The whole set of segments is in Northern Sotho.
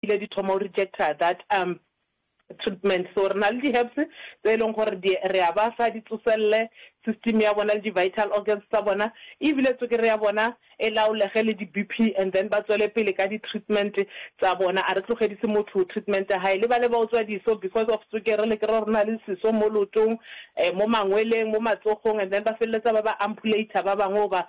ile di thoma o rejecta that um treatment so re na le di herbs tse e leng gore di re a ba fa di tsoselele system ya bona le di vital organs tsa bona ebile tsokere ya bona e laolege le di BP and then ba tswele pele ka di treatment tsa bona a re tlogedise motho treatment ya hae le ba le ba otswa diso because of tsokere le kere rona le seso mo lotong eh, mo mangweleng mo matsogong and then ba feleletsa ba ba ampulate ba bangwe ba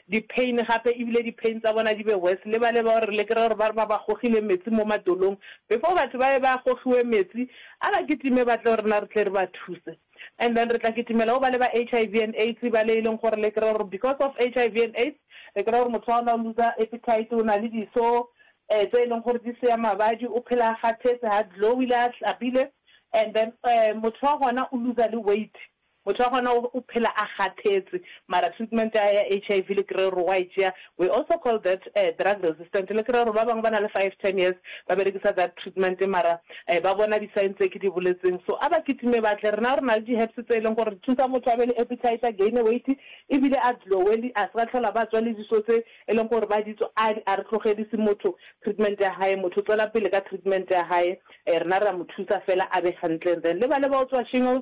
di pain gape ebile di pain tsa bona di be worse le bale bao re le kry-a gore ba re ba ba gogile metsi mo matolong before batho ba be ba gogiwe metsi a ba kitime ba tle go rena re tle re ba thuse and then re tla kitimela go ba le ba HIV and aids bale e leng gore le kry-a gore because of HIV and aids re kry-a gore motho wa gona o looser appetite o na le diso um tse e leng gore di seya mabadi o phela a kgathetse ga glowy le a hlabile and then um motho wa gona o looser le weight Motho wa gona o phela a kgathetse, mara treatment ya hae ya HIV le kerero wa e tšea, we also call that drug resistant, le kerero ba bangwe ba na le five, ten years ba berekisa that treatment mara ba bona di sign tse ke di boletseng, so a ba kitime ba tle, rena re na le di herbs tse e leng gore di thusa motho a be le appetite, a gaine weight ebile a glow-e, le a se ka tlhola ba tswa le diso tse e leng gore ba di tswa, a a re tlogedise motho treatment ya hae, motho o tswela pele ka treatment ya hae, rena re a mo thusa fela a be hantle, and then le bale ba o tswa shingles,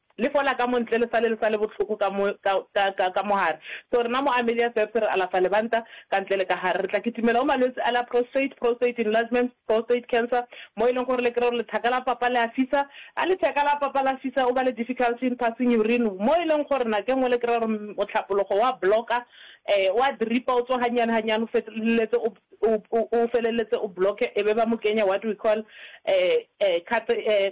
Le fola ka mo ntle, le sale le sale bohloko ka mo, ka, ka, ka, ka mo gare. So rena mo Amelia Serbs re alafa lebanta, ka ntle le ka gare. Re tla kitimela go malwetsi a la prostrate, prostate enlargement, prostate cancer, mo e leng gore le kry-e gore lethaka la papa le a fisa. Ga letheka la papa la fisa, o ba le difficulty in passing urine, mo e leng gore nako e nngwe le kry-a gore mohlapologo wa block-a, um wa dripa, o tswa gannyane gannyane, o feleletse o, o, o, o feleletse o block-e, e be ba mo kenya what we call, um, um, um,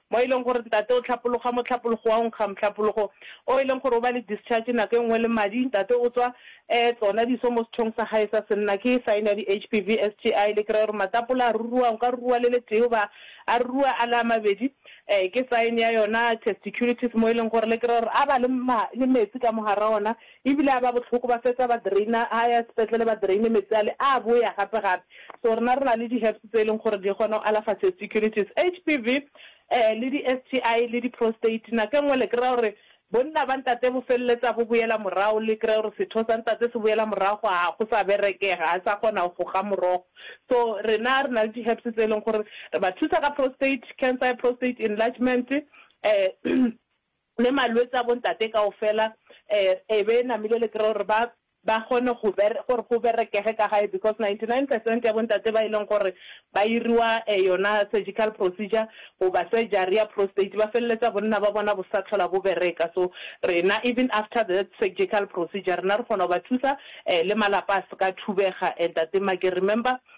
mo e leng gore ntate o hlapologa mohlapologo wa go nkga mohlapologo o e leng gore o ba le discharge nako e nngwe le madi, ntate o tswa um tsona diso mo sethong sa gae sa senna, ke sign ya di-HPV, STI, le kry-e gore matapole a ruruwa, o ka ruruwa le le tee goba a ruruwa a le a mabedi, um ke sign ya yona testiculitis mo e leng gore le kry-e gore a ba le le metsi ka mo gare ga ona. E bile a ba bohloko, ba fetsa ba drainer, ha ya sepetlele ba draine metsi ale, a boya gape gape. So rena re na le di herbs tse e leng gore di kgona go alafa testiculitis, HPV, eh, le di STI le di prostate. Nako e nngwe le kry-a gore bonna ba ntate bo feleletsa bo boela morago, le kry-e gore setho sa ntate se boela morago, ha go sa berekega, ha sa kgona go goga morogo. So rena re na le di herbs tse e leng gore re ba thusa ka prostate cancer, prostate enlargement, eh, Le malwetse a bontate kaofela e be e namile le kry gore ba ba kgone go gore go berekege ka gae because 99 percent ya bontate ba e leng gore ba iriwa yona surgical procedure goba surgery ya prostate ba feleletsa bonna ba bona bo sa tlhola bo bereka so rena even after the surgical procedure rena re kgona go ba thusa le malapa a se ka thubega and tate Make remember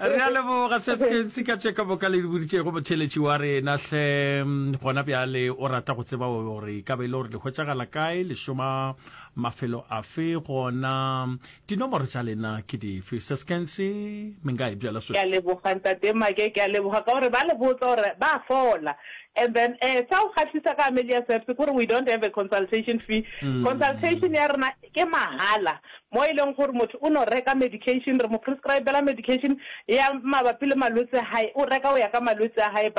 re a leboga se se ka tše ka boka le di boditšego motheletši wa rena hle gona bjale o rata go tseba gore e ka be e le gore le hwetšagala kae le šoma mafelo afe gona dinomoro tša lena ke dife se sekense mengae bjala so ke a leboga ntate make ke a leboga ka gore ba le botsa gore ba fola and then eh sa o kgahlisa ka amelia service kore we don't have a consultation fee consultation ya rena ke mahala Mo e leng gore motho o no reka medication, re mo prescribela medication ya mabapi le malwetse a hae, o reka go ya ka malwetse a hae, but.